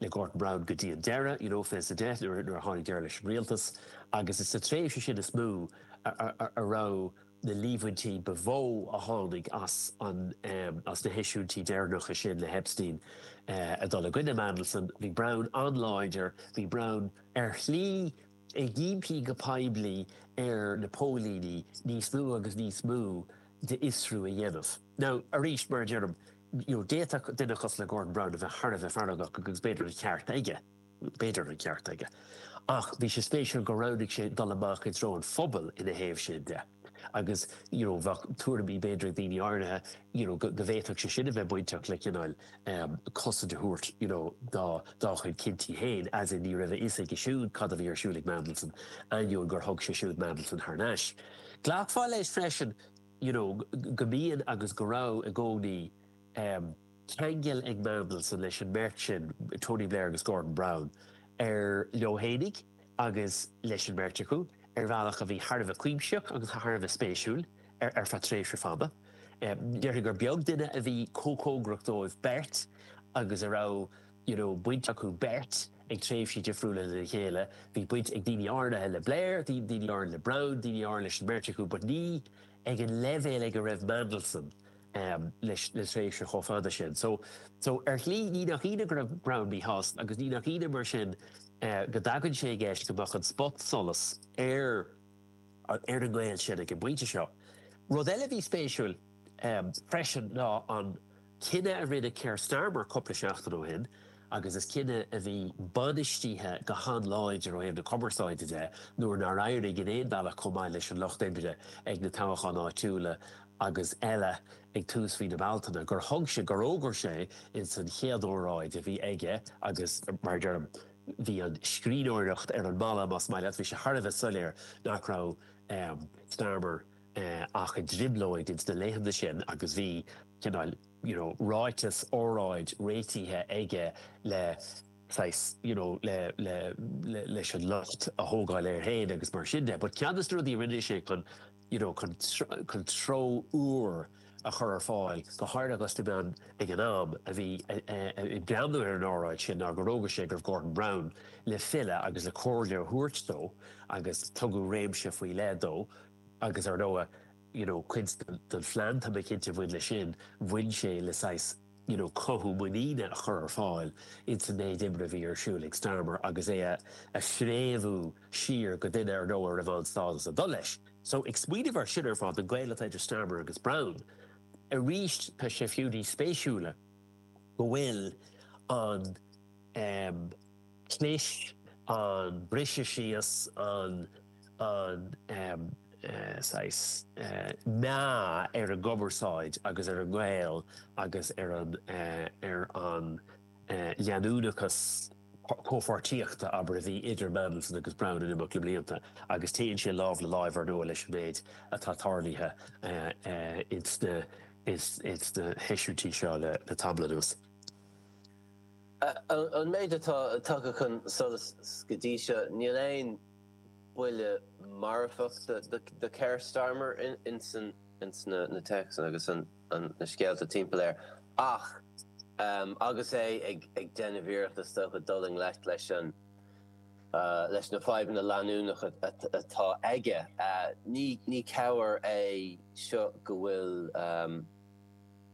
le Gordon Brown go dtí an deireadh, you know, fiche sa deich nuair a tháinig deireadh leis an rialtas agus is sa tréimhse sin is mó a raibh na líomhaintí ba mhó a tháinig as an, as na heisiúintí deireanacha sin le hEpstein ag dul i gcoinne Mandelson. Bhí Brown an-láidir, bhí Brown ar shlí ag impí go poiblí ar na póilíní níos mó agus níos mó d'fhiosrú a dhéanamh. Nó, arís, mar a deirim, d'fhéadfadh duine cosúil le Gordon Brown a bheith thar a bheith feargach agus b'fhéidir an ceart aige, b'fhéidir an ceart aige, ach bhí sé spéisiúil gur roghnaigh sé dul amach i dtreo an phobail ina thaobh sin de agus you know bheadh tuairimí b'fhéidir ag daoine áirithe you know go bhféadfadh sé sin a bheith bainteach le cineál um, cosaint a thabhairt you know, dá, dá chuid cinntí féin as in ní raibh a fhios aige siúd cad a bhí ar siúl ag Mandelson ainneoin gur thug sé siúd Mandelson thar n-ais. Glacfá leis freisin you know go mbíonn agus go raibh i gcónaí em ceangal ag Mandelson leis an mbeirt sin, Tony Blair agus Gordon Brown, ar leithligh agus leis an mbeirt acu ar bhealach a bhí thar a bheith cuimsitheach agus thar a bheith spéisiúil ar ar feadh tréimhse fada. Em déarfainn gur beag duine a bhí chomh cóngarach dóibh beirt agus a raibh you know baint acu beirt ag tréimhsí difriúla lena chéile, bhí baint ag daoine áirithe le Blair, daoine áirithe le Brown, daoine áirithe leis an mbeirt acu but ní ag an leibhéal ag a raibh Mandelson um leis le tréimhse chomh fada sin. So so ar shlí ní nach ionadh go raibh Brown míshásta agus ní nach ionadh mar sin uh go dtagann sé i gceist go mbeadh an spot solas ar ar an nGael sin ag an bpointe seo. Rud eile bhí spéisiúil um freisin ná an Cinneadh a rinne Keir Starmer cúpla seachtain ó shin, agus is cinneadh a bhí bainistíthe go han-láidir ó thaobh na cumarsáide de nuair nár éirigh in aon bhealach chomh maith leis an Lucht Oibre ag na toghcháin áitiúla agus eile ag tús mhí na Bealtaine, gur thug sé, gur fhógair sé ins an chéad óráid a bhí aige, agus mar a deirim, bhí an scríbhneoireacht ar an mballa, más maith leat, bhí sé thar a bheith soiléir nach raibh Starmer. ach i dtrioblóid ins na laethanta sin agus bhí cineál you know ráiteas, óráid réitithe aige le saghas you know le, le, le, leis an locht a thógáil air féin agus mar sin de. But ceann de na rudaí a rinne sé chun you know chun, chun treo úr a chur ar fáil go háirithe agus na meán ag an am a bhí ag breathnú ar an óráid sin ná gur fhógair sé go raibh Gordon Brown le filleadh agus le comhairle a thabhairt dó agus tugadh réimse faoi leith dó Agus ar ndóigh you know cuid den phlean tá mé cinnte a bhain leis sin, bhain sé le saghas you know cothú muiníne a chur ar fáil ins an méid oibre a bhí ar siúl ag Starmer agus é a a phréamhú siar go duine ar ndóigh a raibh an-stádas ag dul leis. So ag smaoineamh ar sin ar fad, an gaol atá idir Starmer agus Brown, arís tá sé fiú níos spéisiúla go bhfuil an ehm, Chlis an briseadh síos an an saghas meá ar an gcumarsáid agus ar an ngaol agus ar an ar an leanúnachas comhpháirtíochta, abair, a bhí idir Mandelson agus Brown in imeacht na mblianta agus téann sé lámh le láimh, ar ndóigh, leis an méid atá tarlaithe ins na ins na heisiúintí seo le tamall anuas. An méid atá tagtha chun solais go dtí seo, níl aon buille marfach do Keir Starmer ins na téacsanna agus na scéalta timpeall air ach agus é ag déanamh iarracht is dócha dul i ngleic leis na fadhbanna leanúnacha atá aige. Ní cabhair é seo go bhfuil.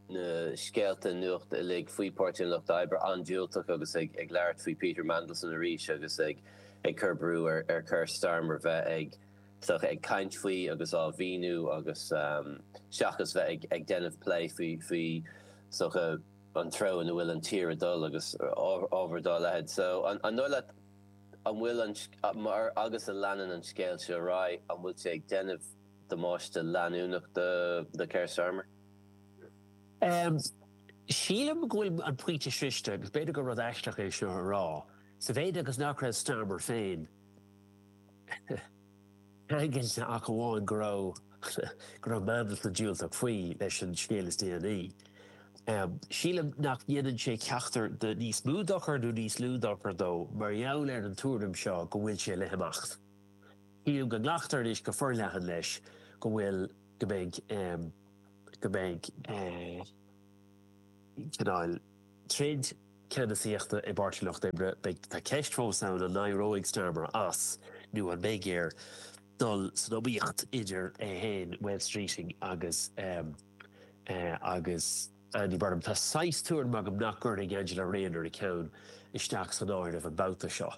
na scéalta nuachta uilig faoi Páirtí an Lucht Oibre an-diúltach agus ag labhairt faoi Peter Mandelson arís agus ag cur brú ar Keir Starmer bheith sort of ag caint faoi agus á mhíniú agus seachas bheith ag déanamh plé faoi sort of an treo ina bhfuil an tír ag dul agus ábhar dá leithéid. So, an dóigh leat, an bhfuil an, mar agus a leanann an scéal seo ar aghaidh, an bhfuil sé ag déanamh damáiste leanúnach do Keir Starmer? Sílim go bhfuil an pointe sroichte agus b'fhéidir gur rud aisteach é seo a rá, sa mhéid agus nach raibh Starmer féin ceangailte ach amháin go raibh go raibh Mandelson diúltach faoi leis an scéal is déanaí. Sílim nach déanann sé ceachtar de níos mó dochair nó níos lú dochair dó mar gheall ar an tuairim seo go bhfuil sé le himeacht. Sílim go nglactar anois go forleathan leis go bhfuil. go mbeidh go mbeidh cineál troid ceannasaíochta i bPáirtí an Lucht Oibre. Beidh tá ceist fós ann an n-éireoidh Starmer as nó an mbeidh air dul san iomaíocht idir é féin, Wes Streeting agus agus Andy Burnham. Tá saghas tuairim agam nach gcuirfidh Angela Rayner a ceann isteach san áireamh an babhta seo.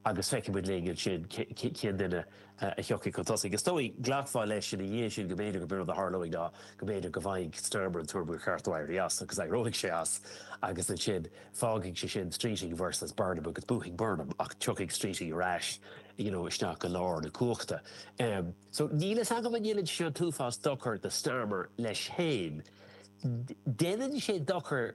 agus feicfidh muid linn ansin cén duine a thiocfaidh chun tosaigh. Is dóigh, ghlacfá leis ina dhiaidh sin go mb'fhéidir gurb in rud a tharlóidh nó go mb'fhéidir go bhfaighidh Starmer an tuairim gur cheart dó éirí as agus éireoidh sé as agus ansin fágfaidh sé sin Streeting versus Burnham agus buafaidh Burnham ach tiocfaidh Streeting ar ais you know isteach go lár na cumhachta. So níl fhios agam an ndéanann sé seo an t-uafás dochair do Starmer leis féin. Déanann sé dochar.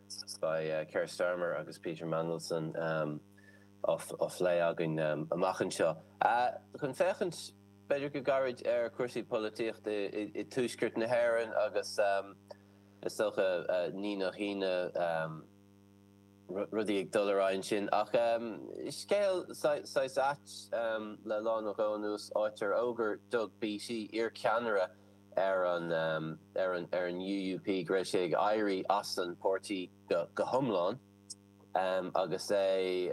Beidh Keir Starmer agus Peter Mandelson á bplé againn amach anseo chun féachaint b'fhéidir go gairid ar chúrsaí polaitíochta i dTuaisceart na hÉireann agus is dócha ní nach hionadh rudaí ag dul ar aghaidh ansin. Ach scéal saghas ait le lá nó dhó anuas, áit ar fhógair Doug Beattie, iar ceannaire ar an ar an ar an UUP go raibh sé ag éirí as an páirtí go go hiomlán agus é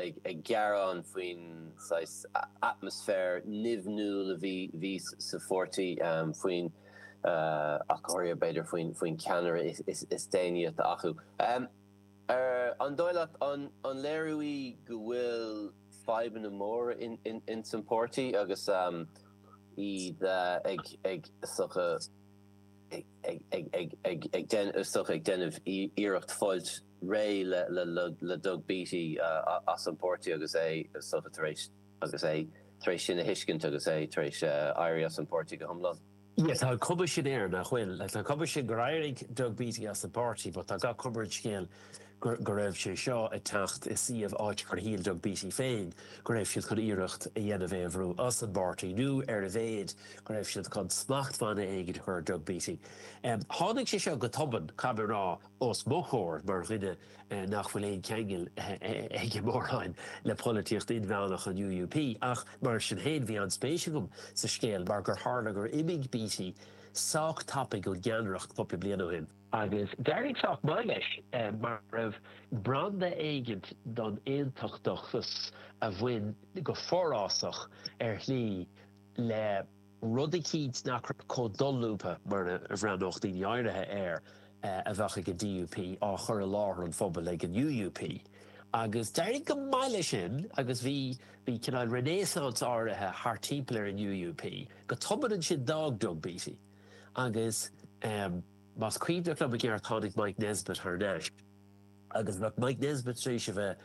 ag ag gearán faoin saghas atmaisféar nimhniúil a bhí bhí sa pháirtí faoin ach go háirithe b'fhéidir faoin faoin ceannaire is is déanaí atá acu. An dóigh leat an an léiriú í go bhfuil fadhbanna móra ins an páirtí agus iad ag déanamh iarracht fáilt réidh le Doug Beattie as an bpáirtí agus é tar éis sin a thuiscint agus é tar éis éirí as an bpáirtí go hiomlán. Yeah, tá an cuma sin air nach bhfuil. Like, tá an cuma sin gur éirigh Doug Beattie as an bpáirtí but tá gach cuma ar an scéal gur, go raibh sé seo ag teacht i suíomh áit gur shíl Doug Beattie féin go raibh siad chun iarracht a dhéanamh é a bhrú as an bpáirtí nó ar a laghad go raibh siad chun smachtbhanna éigin a chur ar Doug Beattie. Um, tháinig sé seo go tobann, caithfidh mé a rá, os mo chomhair mar dhuine nach bhfuil aon cheangal aige mórán le polaitíocht inmheánach an UUP, ach mar sin féin bhí an-spéis agam sa scéal mar gur tharla gur imigh Beattie sách tapaidh ón gceannaireacht cúpla bliain ó shin. Agus d'éirigh sách maith leis mar go raibh branda éigin don aontachtachas a bhain go forásach ar shlí le. rud eicínt nach raibh chomh dolúbtha mar a bhreathnódh daoine áirithe air a bheadh ag an DUP á chur i láthair an phobail ag an UUP. Agus d'éirigh go maith leis sin agus bhí bhí cineál renaissance áirithe thart timpeall ar an UUP. Go tobann ansin d'fhág Doug Beattie agus más cuimhin liom i gceart tháinig Mike Nesbitt thar n-ais. agus bheadh Mike Nesbitt tar éis a bheith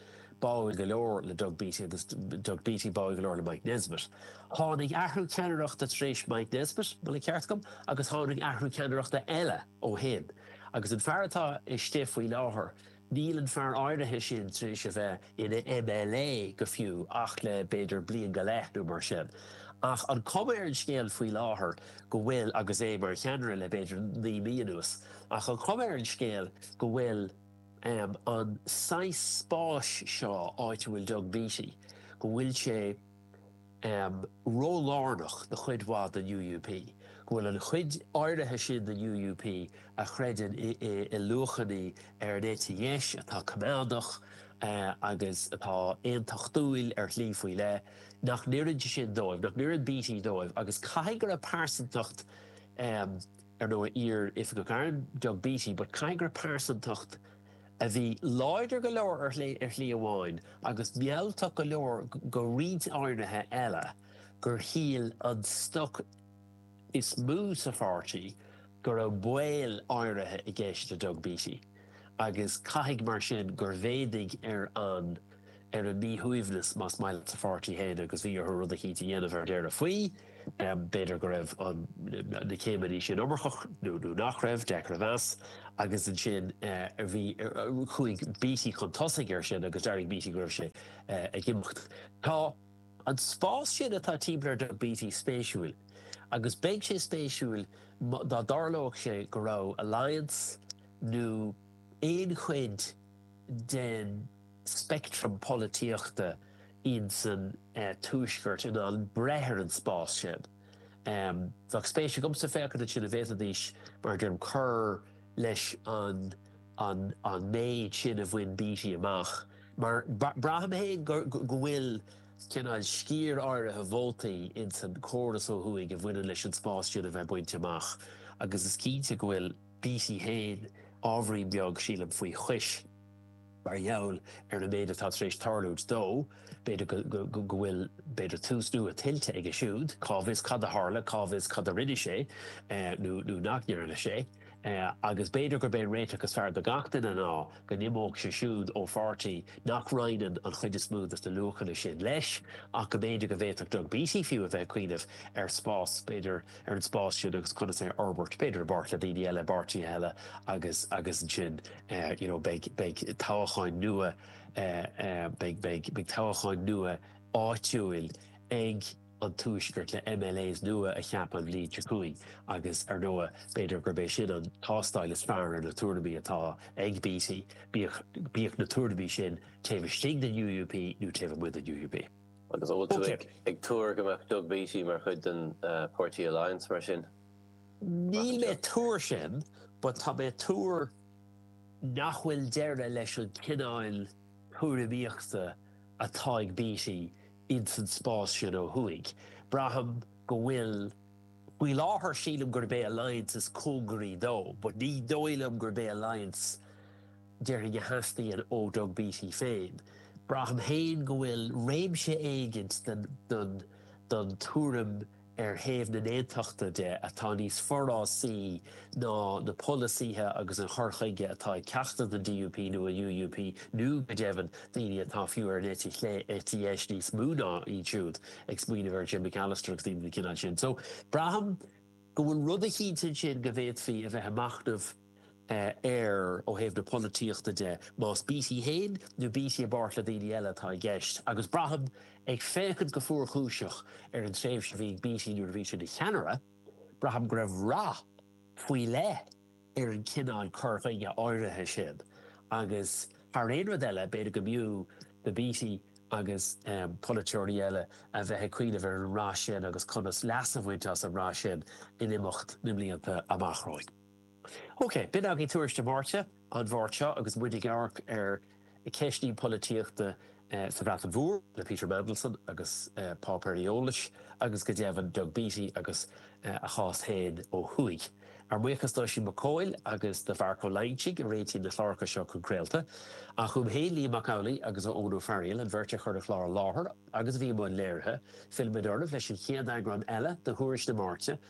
báúil go leor le Doug Beattie agus Doug Beattie báúil go leor le Mike Nesbitt. Tháinig athrú ceannaireachta tar éis Mike Nesbitt, má tá an ceart agam, agus tháinig athrú ceannaireachta eile ó shin agus an fear atá istigh faoi láthair, níl an fear áirithe sin tar éis a bheith ina MLA go fiú ach le b'fhéidir bliain go leith nó mar sin. Ach an chuma ar an scéal faoi láthair go bhfuil, agus é mar cheannaire le b'fhéidir naoi mí anuas, ach an chuma ar an scéal go bhfuil an saghas spáis seo, áit a bhfuil Doug Beattie, go bhfuil sé. ró-lárnach do chuid mhaith den UUP, go bhfuil an chuid áirithe sin den UUP a chreideann i luachanna ar an eite dheis atá coimeádach agus atá aontachtúil ar shlí faoi leith, nach n-oireann sin dóibh, nach n-oireann Beattie dóibh agus caithfidh gur pearsantacht ar ndóigh, iar-Oifigeach Airm, Doug Beattie, but caithfidh gur pearsantacht a bhí láidir go leor ar shlí amháin agus mealltach go leor do roinnt áirithe eile gur shíl an stoc is mó sa pháirtí go raibh baol áirithe i gceist le Doug Beattie agus caithfidh mar sin gur mhéadaigh ar an ar a míshuaimhneas, más maith leat, sa pháirtí féin agus bhí orthu rud eicínt a dhéanamh ar deireadh faoi. B'fhéidir go raibh na céimeanna sin iomarcach nó nach raibh, deacair a mheas. Agus ansin bhí, chuaigh Beattie chun tosaigh air sin agus d'fhógair Beattie go raibh sé ag imeacht. Tá an spás sin atá timpeall ar Doug Beattie spéisiúil agus beidh sé spéisiúil dá dtarlóidh sé go raibh Alliance nó aon chuid den, speictream polaitíochta insan tuaisceart in ann breith ar an spás sin. Bheadh spéis agamsa féachaint ansin an bhféadfaidís, mar a deirim, cur leis an méid sin a bhain Beattie amach, mar braithim féin go bhfuil cineál sciar áirithe vótaí insan chóras ó thuaidh a bhaineann leis an spás sin a bhaint amach agus is cinnte go bhfuil Beattie féin ábhairín beag, sílim, faoi chois. Mar gheall ar an méid atá tar éis tarlúint dó, b'fhéidir go bhfuil, b'fhéidir, tús nua tuillte aige siúd. Cá bhfios cad a tharla, cá bhfios cad a rinne sé nó nach ndearna sé. Agus b'fhéidir gurb é an réiteach is fearr do gach duine ná go n-imeodh sé siúd ó pháirtí nach roinneann an chuid is mó de na luachanna sin leis, ach go mb'fhéidir go bhféadfadh Doug Beattie fiú a bheith ag cuimhneamh ar spás, b'fhéidir, ar an spás sin agus conas é a fhorbairt, b'fhéidir i bpáirt le daoine eile, i bpáirtithe eile agus agus ansin you know beidh beidh toghcháin nua beidh toghcháin nua áitiúil ag an Tuaisceart le MLAs nua a cheapadh an bhliain seo chugainn agus ar ndóigh b'fhéidir gurb é sin an tástáil is fearr ar na tuairimí atá ag Beattie, bíodh na tuairimí sin taobh istigh den UUP nó taobh amuigh den UUP. Agus an bhfuil tú ag tuar go mbeadh Doug Beattie mar chuid den Páirtí Alliance mar sin? Níl mé ag tuar sin, but tá mé ag tuar nach bhfuil deireadh leis an cineál tuairimíochta atá ag Beattie ins an spás sin ó thuaidh. Braithim go bhfuil, faoi láthair sílim gurb é Alliance is cóngaraí dó, but ní dóigh liom gurb é Alliance déarfainn a theastaíonn ó Doug Beattie féin. Braithim féin go bhfuil réimse éigint den tuairim ar thaobh na hAontachta de atá níos forásaí ná na polasaithe agus an cur chuige atá ag ceachtar den DUP nó an UUP nó, go deimhin, daoine atá fiú ar an eite chlé, eite dheis níos mó ná iad siúd, ag smaoineamh ar Jim Allister agus daoine den chineál sin. So, braithim go bhfuil rud eicínt ansin go bhféadfaí a bheith ag machnamh. air ó thaobh na polaitíochta de, más Beattie féin nó Beattie i bpáirt le daoine eile atá i gceist, agus braithim, ag féachaint go fuarchúiseach ar an tréimhse a bhí ag Beattie nuair a bhí sé ina cheannaire, braithim go raibh rath faoi leith ar an chineál cur chuige áirithe sin agus thar aon rud eile b'fhéidir go mb'fhiú do Beattie agus polaiteoirí eile a bheith ag cuimhneamh ar an rath sin agus conas leas a bhaint as an rath sin in imeacht na mblianta amach romhainn. Ok, b'in againn Tuairisc na Máirte an Mháirt seo agus muid ag amharc ar cheisteanna polaitíochta sa Bhreatain Mhór le Peter Mandelson agus páipéir eolais agus go deimhin Doug Beattie agus a chás féin ó thuaidh. Ár mbuíochas d'Oisín Mac Cóil agus do Mharc Ó Loingsigh a réitíonn na cláracha seo chun craolta, ach uaim féin Liam Mac Amhlaigh agus Eoin Ó Fearghail, an bheirt a chuir an chlár i láthair agus a bhí i mbun léirithe. Fillfimid oraibh leis an chéad eagrán eile de Thuairisc na Máirte,